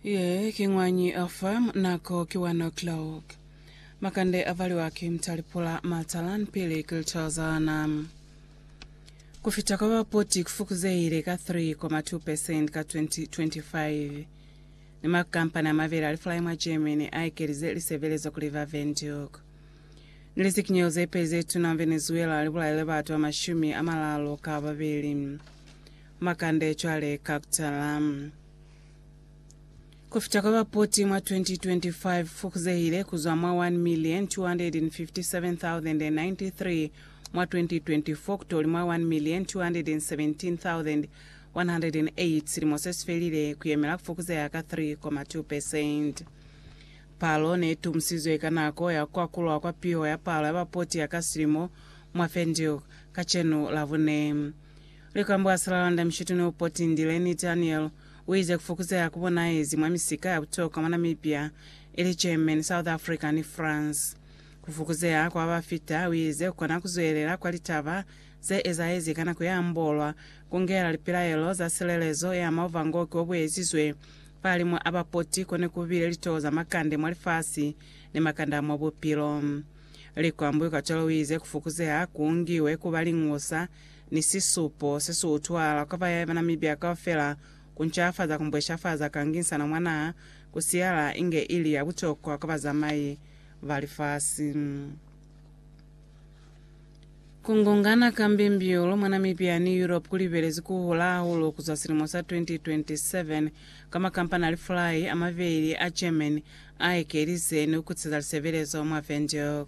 Ye ki ñwañi a farm nako ki one o'clock. Makande a valiwa ki mtalipula matalan pili ki litwalo za lana. Ku fita kwa ba poti ku fukuzehile ka 3.2 percent ka 2025. Ni ma kampani a mabeli a lifulai mwa Germany a ekelize lisebelezo ku River Venduc. Ni lizikinyelo ze peli ze tuna Venezuela li bulaile batu ba mashumi a malalo ka babeli. Makande cwale ka kutala. Kufita kwa bapoti mwa 2025 fukuzehile kuzwa mwa 1,257,093 mwa 2024 kutoli mwa 1,217,108 silimo sesifelile, kuyemela kufukuzeha ka 3.2 percent. Palo neitumusizwe ka nako ya kukwakulwa kwa piho ya palo ya bapoti ya ka silimo mwa Windhoek kacenu Labune. Likambo a si la landa Mishituni o potindile ni Daniel, u ize ku fokuzeha ku bonaezi mwa misika ya butokwa mwa Namibia, ili Germany, South Africa ni France. Ku fokuzeha kwa ba fita, u ize, ku kona ku zwelela kwa litaba ze ezaezi ka nako ye ambolwa, ku ngela lipilaelo za silelezo ye ama uvangoki o bu ezizwe fahalimwa a ba poti ko ne ku bile litoho za makande mwa lifasi ni makande a mwa bupilo. Likambo ikacwalo u ize ku fokuzeha ku ngiwe ku ba lingusa ni sisupo se si utwala kwa bayaye ba Namibia kaufela ku ncafaza ku mbweshafaza ka ngisano mwa naha, ku siyala inge ili ya butokwa kwa bazamai ba lifasi. Ku ngungana ka mbimbiulu mwa Namibia ni Europe ku libelezi ku hula hahulu ku zwa silimo sa 2027, ka makampani a lifulai a mabeli a German a ekelize ni ku kutseza lisebelezo mwa Windhoek.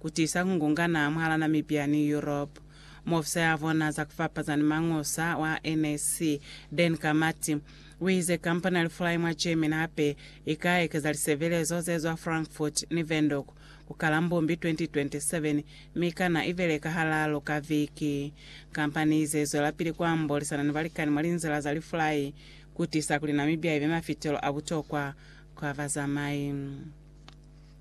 ku tisa ku ngungana mwahala Namibia ni Europe. Muofisa ya vona za ku fapaza ni mangusa wa NAC, Dan Kamathi, u ize kampani ya lifulai mwa Germany hape i ka ekeza lisebelezo ze zwa Frankfurt ni Windhoek ku kala Mbumbi 2027 mi kana i beleka halalu ka viki. Kampani ize i zwelapili ku ambolisana ni balikani mwa linzila za lifulai ku tisa kuli Namibia i be mafitelo a butokwa kwa bazamai.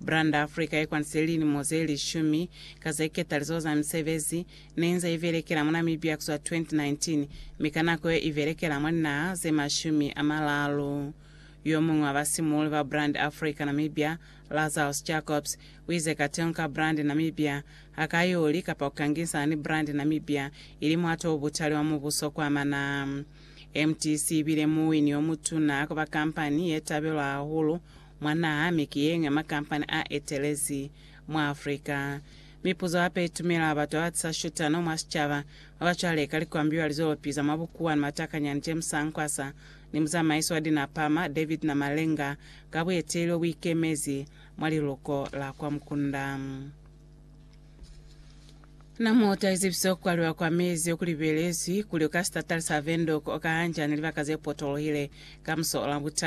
Branda Africa ye kwandisile lilimo ze lishumi ka ze ketalizo za misebezi ne nze ibelekela mwa Namibia kuzwa 2019, mi ka nako ye ibelekela mwa linaha ze mashumi a malalu. Yo muñwi wa basimuuli ba Brand Africa Namibia, Lazarus Jacobs, uize kateño ka Brand Namibia ha ka yo li kapa ku kangisana ni Brand Namibia ili muhato o butali wa mubuso ku amana. MTC ibile muwini yo mutuna kwa ba kampani ye tabelwa hahulu Mwanaa mi ki yeñwi ya makampani a etelezi mwa Africa. Mipuzo hape i tumela batu ba ba tisa shutano mwa sicaba, ba ba cwale ka likwambiwa lizwelopi za mwa bukuwa ni matakanyani James Sankwasa ni muzamaisi wa dinapama David Namalenga ka bueteeli bo bu ikemezi mwa liluko la kwa Mukunda. Na mo taizibise ku kwaliwa kwa mezi oku libelezwi kuli o ka sitatali sa Windhoek o ka hanjani libaka ze potolohile ka muso ola butatu.